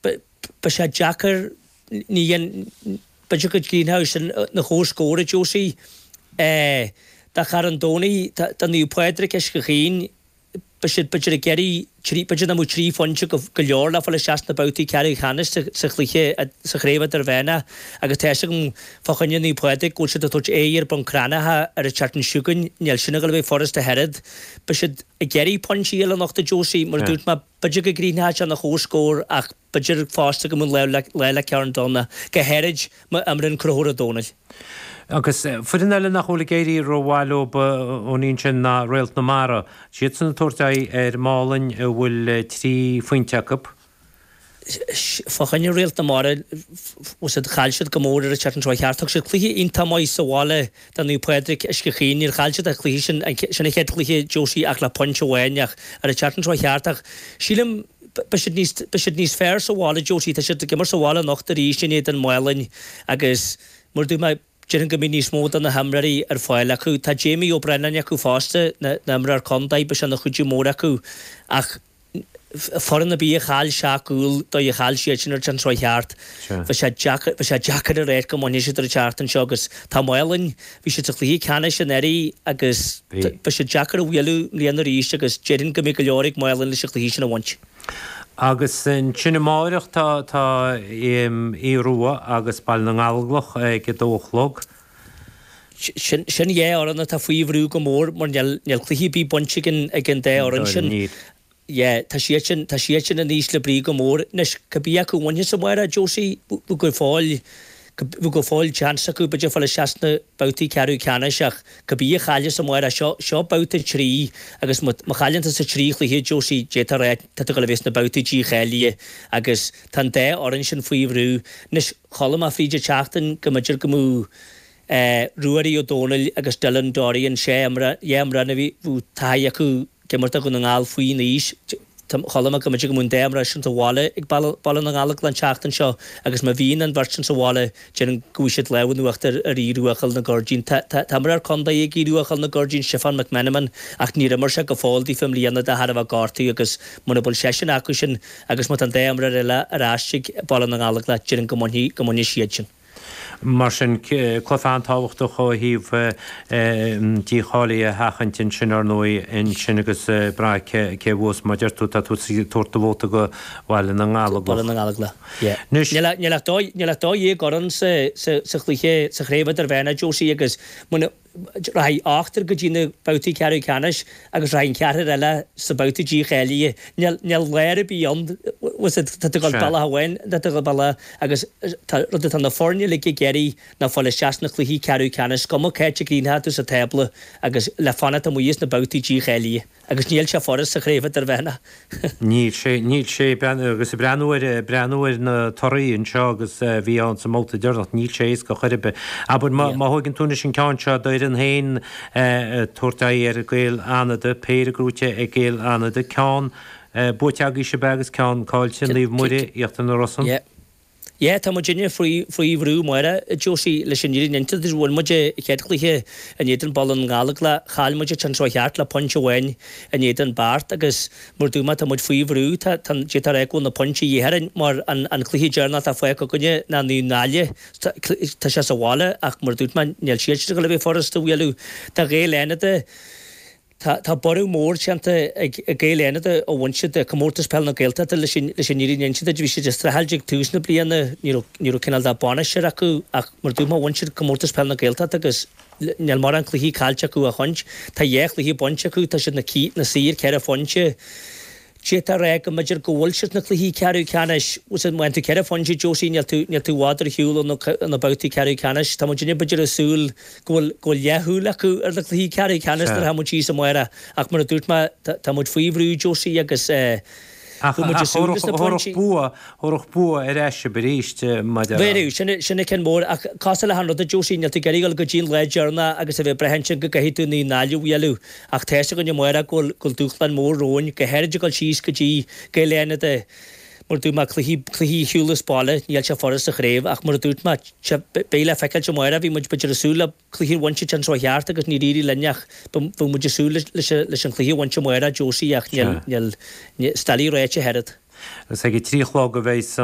Beidh sé deacair, ní dhéan, b'fhéidir go gcríochnóidh sin ina chomhscór, a Josie. Do Charn Domhnaigh, do Naomh Pádraig Uisce Chaoin, beidh siad, b'fhéidir, ag iarraidh trí, b'fhéidir nach mbeadh trí phointe go leor le fáil isteach sna babhtaí ceathrú ceannais sa chluiche, sa Chraobh Idirmheánach agus tá a fhios agam fá choinne Naomh Pádraig go bhfuil siad ag tabhairt aghaidh ar Bhun Cranncha ar an tseachtain seo chugainn. Níl sin ag dul a bheith furasta, ach oiread. Beidh siad ag iarraidh pointí a fháil anocht, a Josie, mar a dúirt mé. B'fhéidir go gcríochnóidh sé ina chomhscór ach b'fhéidir fosta go mbeidh an lá le Carn Domhnach go háirid má imríonn Conchúr Ó Dónaill. Agus foireann eile nach bhfuil ag éirí rómhaith leo ón Ion sin ná Réalt na Mara. Siadsan ag tabhairt aghaidh ar Málainn a bhfuil trí phointe acu. Fá choinne Réalt na Mara, chaill siad go mór ar an tseachtain a chuaigh thart. Thug siad cluiche iontach maith sa bhaile Do Naomh Pádraig Uisce Chaoin, níor chaill siad an cluiche sin, sin an chéad chluiche Josie ach le pointe amháin ach ar an tseachtain seo chuaigh thart ach sílim beidh siad níos fearr sa bhaile Josie, tá siad ag imirt sa bhaile anocht arís in éadan Málainn agus mar a dúirt mé, déarfainn go mbeidh níos mó de na himreoirí ar fáil acu, tá Jamie Ó Braonáin acu fosta, an t-imreoir contae, beidh sé ina chuidiú mór acu ach. foireann ar bith a chaill seacht gcúl do a chaill siad sin ar an tseachtain a chuaigh thart. Beidh sé deacair, beidh sé deacair a ráit go mbainfidh siad ar an tseachtain seo agus tá Málainn, bhí siad sa chluiche ceannais anuraidh agus beidh sé deacair a bhualadh i mbliana arís agus déarfainn go mbeidh go leor ag Málainn leis an chluiche sin a bhaint. Agus ansin amáireach tá tá Aodh Rua agus Baile na nGallóglach ag a dó a chlog. Sin dhá fhoireann atá faoi bhrú go mór mar níl cluiche ar bith bainte ag an dá fhoireann sin. Tá siad sin, tá siad sin in ísle brí go mór. Anois, cibé acu a bhaineas amáireach, Josie, beidh go fóill, beidh go fóill chance acu, b'fhéidir fáil isteach sna babhtaí ceathrú ceannais ach cibé a chailleas amáireach, seo, seo babhta a trí agus má, má chailleann tusa trí chluiche, Josie, d'fhéadfá a rá, tá tú ag dul a bheith sna babhtaí dícháilithe agus, Tá an dá fhoireann sin faoi bhrú anois, chuala mé fríd an tseachtain go mb'fhéidir go mbeadh Ruairí Ó Dónaill agus Dylan Dorian, sin dhá imreoir a bhfuil taithí acu ag imirt do Dhún na nGall faoin aois, ach chuala mé go mb'fhéidir go mbeadh an dá imreoir sin sa bhaile ag Baile na nGallóglach an tseachtain seo agus má bhíonn an bheirt sin sa bhaile déarfainn go bhfaighidh siad lámh in uachtar ar Aodh Rua Chúil na gCuirridín. Tá imreoir contae ag Aodh Rua Chúil na gCuirridín, Stiofán McMenamin, ach níor imir sé go fóill daofa i mbliana de thairbhe gortú agus mura bhfuil seisean acu sin agus má tá an dá imreoir eile ar ais ag Baile na nGallóglach déarfainn go mbainfidh, go mbainfidh siad sin. Mar sin, cluiche an-tábhachtach ó thaobh dícháilí a sheachaint ansin, ar ndóigh, ansin ag brath cé a bhuas, mar deir tú, tá tú ag tabhairt do vóta do Bhaile na nGallóglach. Níl ach dhá dhéag foireann sa chluiche sa chraobh idirmheánach, Josie, agus rachaidh ochtar go dtí na babhtaí ceathrú ceannais agus rachaidh an ceathrar eile sna babhtaí dícháilithe. Níl lár ar bith ann, tá tú ag dul bealach amháin nó tá tú ag dul bealach eile agus an rud atá na foirne uilig ag iarraidh ná fáil isteach sna cluichí ceathrú ceannais, is cuma cá háit a gcríochnaíonn tú sa tábla agus le fanacht amuigh as na babhtaí dícháilithe. Agus níl sé furasta craobh idirmheánach. Níl sé, níl sé, agus ag breathnú ar, ag breathnú ar na torthaí anseo agus a bhí ann sa mbabhta deireanach, níl sé éasca chor ar bith. Abair má, má thóigeann tú anois an ceann seo d'fhoireann féin ag tabhairt aghaidh ar Gaeil Fhánada, péire gnóite ag Gaeil Fhánada, ceann buaite agaibhse ab ea agus ceann cáillte, Naomh Muire, Íochtar na Rosann. Yeah, tá muidinne faoi, faoi bhrú amárach, Josie, leis an fhírinne a inse duit. Bhain muid an chéad chluiche in éadan Baile na nGallóglach, chaill muid an tseachtain seo thart le pointe amháin in éadan Beart agus mar a dúirt mé tá muid faoi bhrú, tá, tá, déarfainn go bhfuil na pointí a dhíth orainn mar an, an cluiche deireanach atá fágtha againne ná Naomh Náille, tá, tá sé sa bhaile ach mar a dúirt mé níl siadsan ag dul a bheith furast a bhualadh. Tá Gaeil Fhánada. Tá borradh mór déanta ag Gaeil Fhánada ó bhain siad Comórtas Peile na Gaeltachta leis an fhírinne a inse duit. Bhí siad ag streachailt ag tús na bliana, ní raibh cineál de bainisteoir acu ach mar a dúirt mé bhain siad Comórtas Peile na Gaeltachta agus níl mórán cluichí caillte acu ó shin, tá dhá chluiche bainte acu, tá siad ina suí ar ceithre phointe. D'fhéadfá a rá go mb'fhéidir go bhfuil siad sna cluichí ceathrú ceannais? Sea, má fhaigheann tú ceithre phointe, Josie, níl tú, níl tú i bhfad ar shiúl ó na, ó na babhtaí ceathrú ceannais. Tá muidinne b'fhéidir ag súil go bhfuil, go bhfuil leathshúil acu ar na cluichí ceathrú ceannais nuair atá muid thíos amárach mar a dúirt mé, tá, tá muid faoi bhrú, Josie, agus eh, Ach, bhuail muid ach, Sasúr agus na thabharfadh, pointí. thabharfadh bua, thabharfadh bua ar ais sibh arís maidir le. Bhéarfadh, sin, sin an cionn mór ach cosúil le achan rud, Josie, níl tú ag iarraidh dul go dtí an lá deireanach agus a bheith ag brath ansin go gcaithfidh tú Naomh Náille a bhualadh Ach tá 'fhios againn amárach go bhfuil dúshlán mór romhainn, go háirid ag dul síos go dtí Gaeil Fhánada mar a dúirt mé, cluichí, cluichí ar shiúl as baile, níl sé furast sa chraobh ach mar a dúirt mé, sea, beidh le feiceáilt amárach, bhí muid, b'fhéidir ag súil le cluichí a bhaint an tseachtain seo thart agus níor éirigh linn ach beidh muid ag súil leis, leis an chluiche a bhaint amárach, Josie ach níl, níl, níl, stail í réitithe oiread. Agus ag a trí a chlog a bheidh.